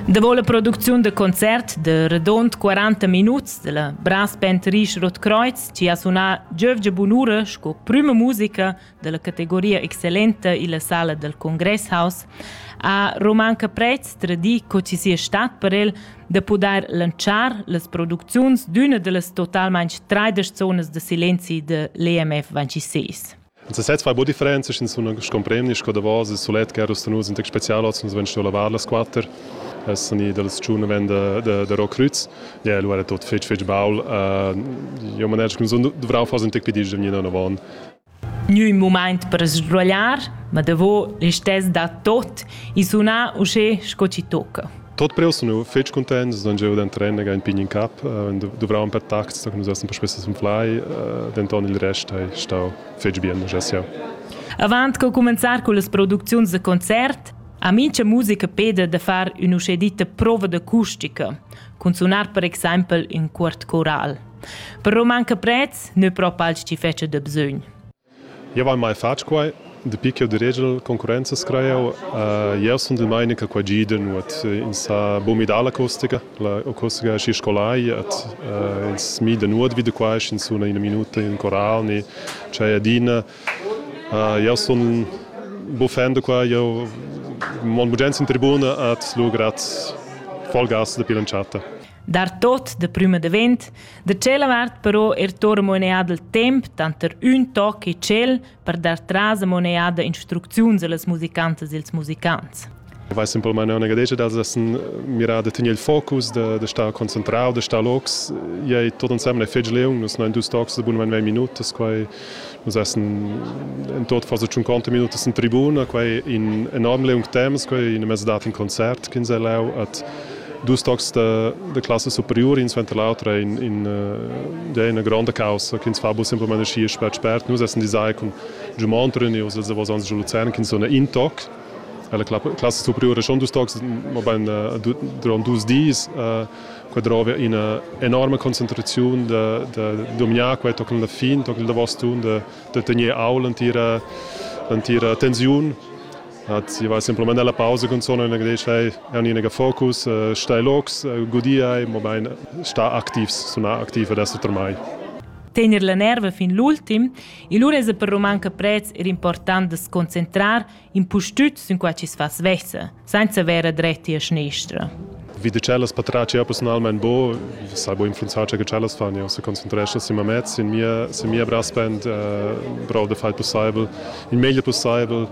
Davo la producziun da concert de redond 40 minuts della brassband Risch Rotkreuz ci ha sunar Giövge Bunura sco prüma musica della categoria excellenta illa sala del Congresshaus ha Roman Caprez tradii co ci sia stat per el da pudair lanzar las producziuns d'üna dellas totalmaing traidesch zonas da silenzi de l'EMF 26. En sesez fai buca differenza, sch'ins sun scompreni sco davos il sulet che era nus in tec special, oz nus vein stuiu lavar las quater. Es ni dals tschun ven da, da, da Rokrüz. Ja, lu era tot fetg fetg baul. Uh, jo maner che sun dovrau far un tec piedi da mia nona Gnü moment per sbrogliar, ma davo listess da tot i suna usché sco ci tocca. Tot preu sun eu fich cuntaint, sun gieu da trener ün pign in cap, duvravan per tacts che nus essem persvessi sun flai, denton il rest hai stau fetg bien, gest jau. Avant co cumenzar con las producziuns da concert, ha mincha musica peda da far ün'uschè ditta prova d'acustica, cun sunar per exempel ün cuort coral. Però manca prezs, nö propa als chi fetscha da bsögn. Jau hai mai fatg quai. Dapi ch'jau diregel concurrenzas crai jau. Jau sundel mai in quai gi da nuot. Ins ha buc midà l'acustica. L'acustica è schi scolai et ins mida nuot vi da quai, sch'ins suna ina minuta in coral ni tschei adina. Jau sun buc fan da quai. Jau mon bugen sin tribuna et lur grad folgas dapi l'entschatta. dar tot de prüma davent, da tschella vart però er tor moneada il temp tanter ün toc e tschel per dar tras a moneada instrucziuns allas musicantas e als musicants. Vai simplesmente una gadetta dals essen mirà da tenere il focus, da, da star concentrado, da star locs. Iai tot ensemble è fetg leung, nus non dus tocs de bun 20 minutas, quai Nus essen in tot far 50 minutas in tribuna, quei in enorm leung temps, quei in mezz dat in concert ch'ins è lau at dus tocs da, da classa superiore in suenter l'autra in, in, uh, ja, una grande causa che ins fa bu semplamain schi spert spert. Nus essen design con Giumont Reneus, els davos ans Luzern, che sono in toc. La classa superiore schon dus tocs, ma ben durant dus dis. Uh, Qua drova ina enorma concentraziun da, da dominar qua tochen la fin, tochen il davos tun, da, da tener au l'entira, l'entira tensiun. Hat, io va semplamain alla pausa con sono in agdei schei an in focus uh, stai locs uh, godiai mobein sta activs suna activ ad esser termai tener la nerva fin l'ultim, e lura es per roman che prez er important de sconcentrar impustüt sün quai chi's fa svessa, senza vera drettia schnestra. Wie de cellas patrace ja personalmein bo, sai bo influenzar che cellas fan, ja se concentrescha sin mamez, sin mia sin mia braspend, uh, brov de fai possible, in meglio possible.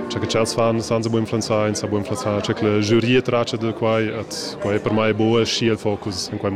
Cioè che cellas fan san se bo influenzar, in sa bo influenzar, cioè che la giuria trace de quai, et quai per mai bo è schi il focus in quai